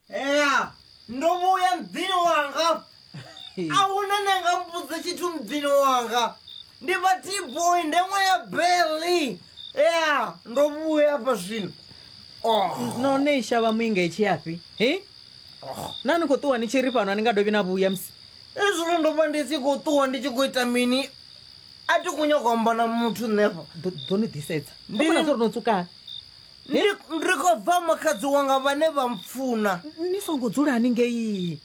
ea ndo muya mdzini wanga ahuna ne nga mbudza tshithu mdzini wanga ndi vha tboy ndeṅwe ya beli ea ndo vhuya afha zwino oh. no ne shavha muinga i tshiyafhi he oh. na ni khou ṱuwa ni tshi ri fhano a ni nga dovhi na vhuya musi ezwino ndo vha ndi tshi khou ṱuwa ndi tshi khou ita mini a ti khou nyaka amba na muthu nṋefha ḓo ni ḓisedza ndi no tsukana Ndi, ndi khou bva makhadzi wanga vhane vha mpfuna. Ni songo dzulani ngei.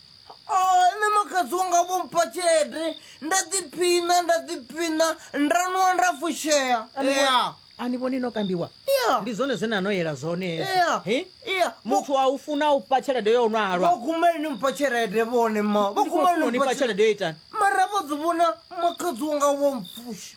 O, nṋe makhadzi wanga vho mpha tshelede, nda ḓiphiṋa, nda ḓiphiṋa, nda nwa nda fushea. Ya. A ni vhoni no kambiwa? Ya. Ndi zwone zwe na no yela zwone Ya. hezwo. He? Ya. Muthu a u funa u fha tshelede yo nwa halwa. Vho kumeli ni mpha tshelede vhone ma. Vho Ndi khou kumeli funa u ni ni fha mpha tshelede tshelede. yo itani? Mara vho dzi vhona makhadzi wanga vho mpfusha.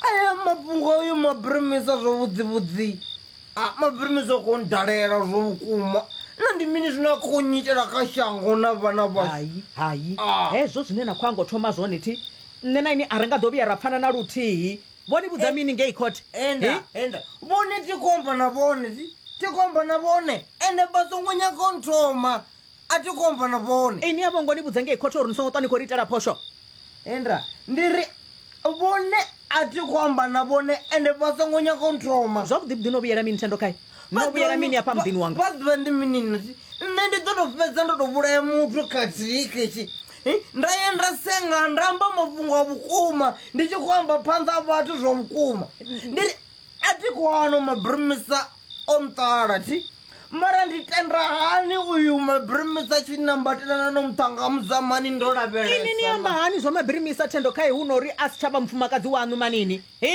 aya mafhungo ayo mabirimisa zwo vhudzivhudzi a mabirimisa ko ndalela zwo vhukuma na ndi mini zwine a khou nyitela kha shango na vhana vhashu hayi hayi Ah. hezwo zwine na khou ango thoma zwone thi nṋe na ini a ri nga ḓo vhuya ra pfana na luthihi vho ni vhudza mini ngei khothe enda enda vhone ti khou amba na vhone ti ti khou amba na vhone ende vha songo nyaga u nthoma A thi khou amba na vhone. Inwi a vho ngo ni vhudza ngei khothe uri ni songo ṱwa ni khou ri itela phosho? Hendra, Ndi ri, Vhone a thi khou amba na vhone ende vha songo nyaga u nthoma. Zwavhuḓivhuḓi no vhuyela mini thendo khae? No vhuyela mini afha muḓini wanga? Vha ḓivha ndi mini na thi? Nṋe ndi ḓo tou fhedza ndo tou vhulaya muthu khathihi khetshi nda ya nda senga nda amba mafhungo a vhukuma ndi tshi khou amba phanḓa ha vhathu zwa vhukuma. Ndi ri, A thi khou hana u mabirimisa. o nṱala thi mara ndi tenda hani uyu mabirimisa tshi nambatelana no muṱhanga muzamani ndo lavhelesa ini ni amba hani zwa mabirimisa thendo khae hu no uri a si tsha vha mufumakadzi waṋu manini hi